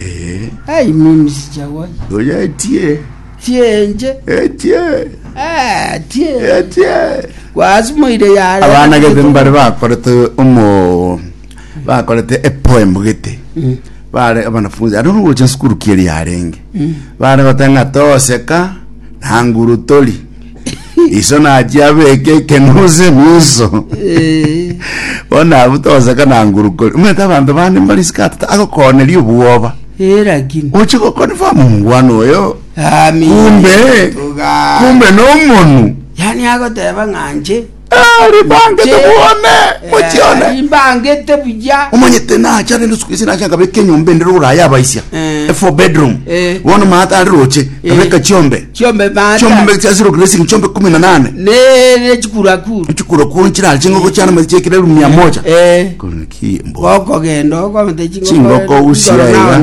Eh, Ai mimi sijawahi. oyo etie, Sienje. etie, Ah, tie. etie. Gwasimoire yare. abana gete mbare bakorete omo bakorete epoem gete Mm. bare abanafunzi ari nogocha sukuru kieri yarenge bare gotanga toseka na nguru tori iso nachia abeke ekenuse miso Eh, bono abwo togoseka na ngurukori omanyete abanto bande mbari sikatata agokoneria obwoba eh, lakini oche gokonfam omongwana oyo Ami, kumbe tuga- kumbe nomonu yani agoteba ng'anche Rimbangete Inche, bwone, eh, mochione. rimbangete buya omanyete nacha rende usiku isi nacha nkabeka enyomba ende rogoro aya abaisia Eh. a four bedroom Eh. bono maata ari roche nkabeka chiombe chiombe chiombe mata mbeka zero grazing chiombe kumi na nane nere chikurakuru chikura kuo nchirali chingoko chiana mazi chiekire rumia moja Eh. Kuri ki mbo gokogenda okomete chingoko usia iga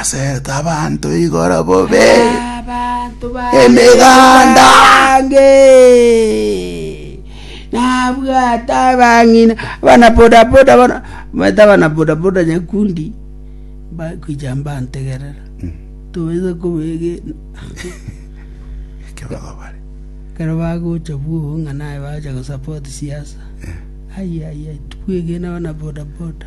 Asete abanto igoro bobe Abanto emeganda. bange nabwate abang'ina abana bodaboda bono omanyete abana bodaboda nyakundi bakwija mbantegerera tobaiza kobege Ekero bagobare. kero bagocha bwogo ng'a naye bagocha gosapoti siasa ai ai ai tibwegene abana bodaboda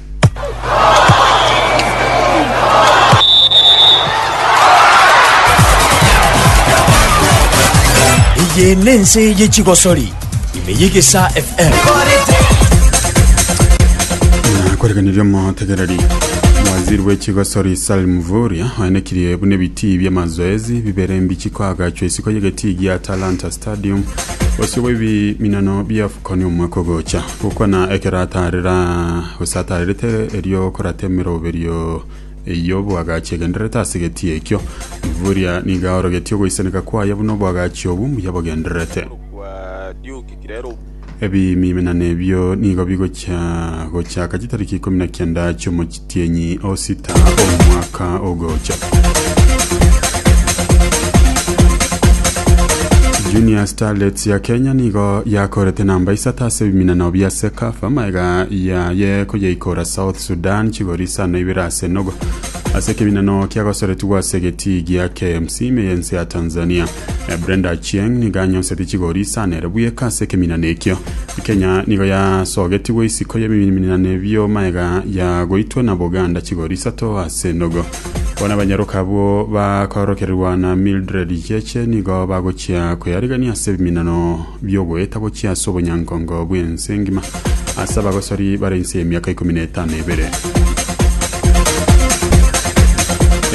Eye nense ye chigosori, ime y'egesa FM. koreganirie omotegereri waziri w'ekigosori salim vuria oenekirie buna ebitii by'amazoezi bibere mbichi koagachwa isiko y'egetii gia talanta stadium bosio bw'ebiminano biafukoni omwaka ogocha Gokwana ekeratara gosatarerete, erio okorata emeroberio eyio bwagachi egendererete ase egeti ekio. Bivuria niga orogetie ogoisaneka kwaye buna obwagachi obwo mbuya bogendererete. Ebimimina nebio nigo bigochia gochaka chitariki ikomi na kianda chiomochie. Tienyi o sita omwaka ogocha. Junior Starlets ya Kenya nigo yakorete namba isato ase ebiminano bia Sekafa maega yaye koyeikora South Sudan chigori isano ibere ase nogo ase ekeminano kiagosoretigwa ase egetii gia KMC ime y'ense ya Tanzania Brenda Achieng' nigo anyonseti chigori isa na ere bweka ase ekeminana ekio. Kenya nigo yasogetigwe isiko y'ebiminana ebio maega yagoitwe na Buganda chigori isato ase nogo. Bono abanyaroka abwo bakorokererwa na Mildred Cheche nigo bagochia koyarigania ase ebiminano biogoeta gochia ase obonyankongo bw'ense engima ase abagosori bare inse y'emiaka ikomi na etano ebere.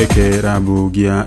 Ekerabu gia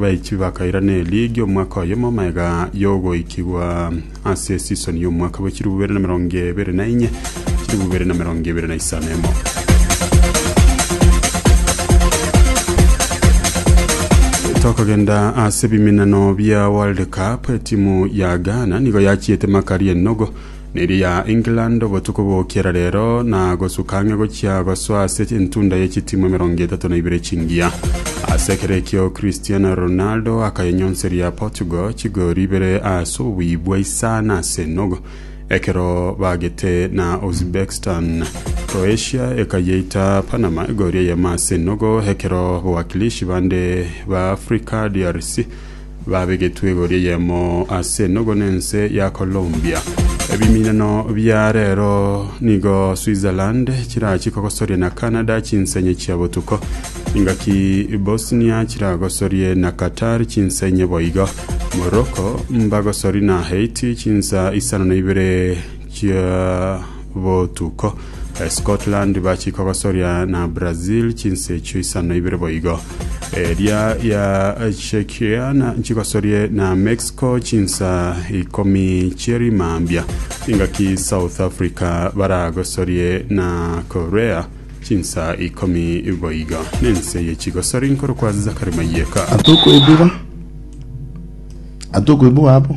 Baichi bakairana eligi omwaka oyomo magega yogoikigwa ase esisoni y'omwaka bwe chilifu bibere na emerongo ebere na inye chilifu bibere na emerongo ebere na isano emo tokogenda ase ebiminano bia world cup etimu ya ghana nigo yachiete makari enogo Neeri ya England obotuko bokiera rero na gosuka ang'e gochia gosoa ase entunda ye chitimwa emerongo etato na ibere chingiya. Ase ekero ekio Cristiano Ronaldo akayenyonseria Portugal chigori ibere ase oboibwa isano ase enogo ekero bagete na Uzbekistan. Croatia ekayeita Panama egori eyemo ase enogo ekero bawakilishi bande ba Africa, DRC, Babegetwe igoro eyemo ase enogo nense ya Colombia. Ebiminano bia rero nigo Switzerland chirachie kogosoria na Canada chinsenye chia botuko. Ingaki Bosnia chiragosorie na Qatar chinsenye boigo. Morocco mbagosori na Haiti chinsa isano na ibere chia botuko. Scotland bachia kogosoria na Brazil chinsa echio isano ibere boigo. Eria ya Czechia na chigosorie na Mexico chinsa ikomi chieri mambia. Ingaki South Africa baragosorie na Korea chinsa ikomi boigo. Nense ye chigosori nkorokwa Zachary Mayeka. atokoibua atokoibua abo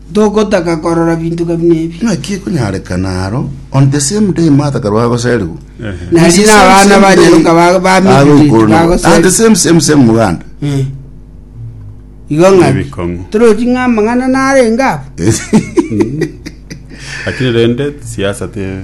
Togotaka korora binto gabina ebi. Naki ekonyarekana aro on the same day Martha karwa agoserigwa, Na Is the riina same, abana same day banyaroka ba- ba aro Mildred igoro na- bagoserigwa. and the same same same muganda Eh. Igo ng'aki? Ebikong'u. Toroti ng'a amang'ana narenge abo? lakini rende siasa te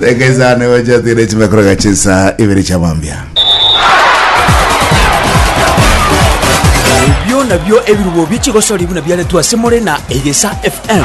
Reka isano egocha tigana echime korega chinsa ibere chia mambia. Ebio nabio ebirubo bi'chigosori buna biaretwe ase more na Egesa FM.